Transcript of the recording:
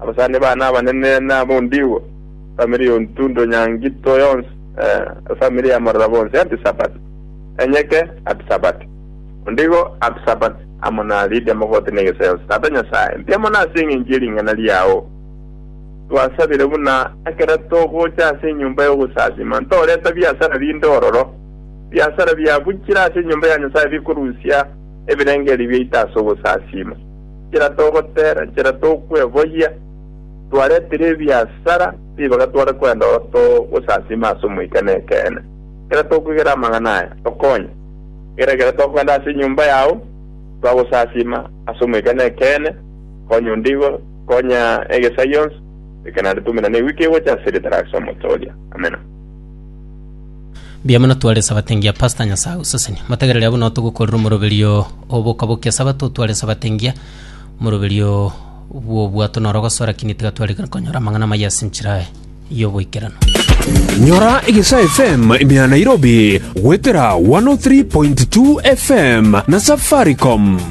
Abasani baane abanene nabondigwe, efamiri y'ontundo nyangito yonsi, efamiri y'amarora bonsi, Abisabadi. Enyeke Abisabadi. Ondigo Abisabadi amo na Lidia mogoti na egesa yonsi. Tata Nyasae, mpiamo mono ase engencho ye ring'ana riao. Twasabire buna ekero togocha ase enyomba y'ogosasima, ntoreta biasara binde ororo, biasara biabuchire ase enyomba ya Nyasae bikorusia ebirengerio biaito ase ogosasima. nchera togotera, nchera tokweboyia, twaretire ebiasara, ribaga tware kwenda oro togosasiima ase Omoika nekeene. Ekero tokwegera amang'ana aya, tokonye. Ekiagera ekero togokenda ase enyomba yao, twagosasiima ase Omoika nekeene, konya onde igo, konya egesaa gionsi, reke naende twaumerane ewiki egocha ase ritera ase omochie oria. Amena. Mbuya mono tware Esabato engiya Pastor Nyasae agosaseni. Motegerere abwo nao togokorera omoroberio obokabokia Sabato otware Esabato engiya. Omoroberio bw'obwato noro ogosoa lakini tiga twarekana konyora amang'ana amaya ase enchera y'oboikeranu. Nyora Egesaa FM imea Nairobi goetera 103.2 FM na Safaricom.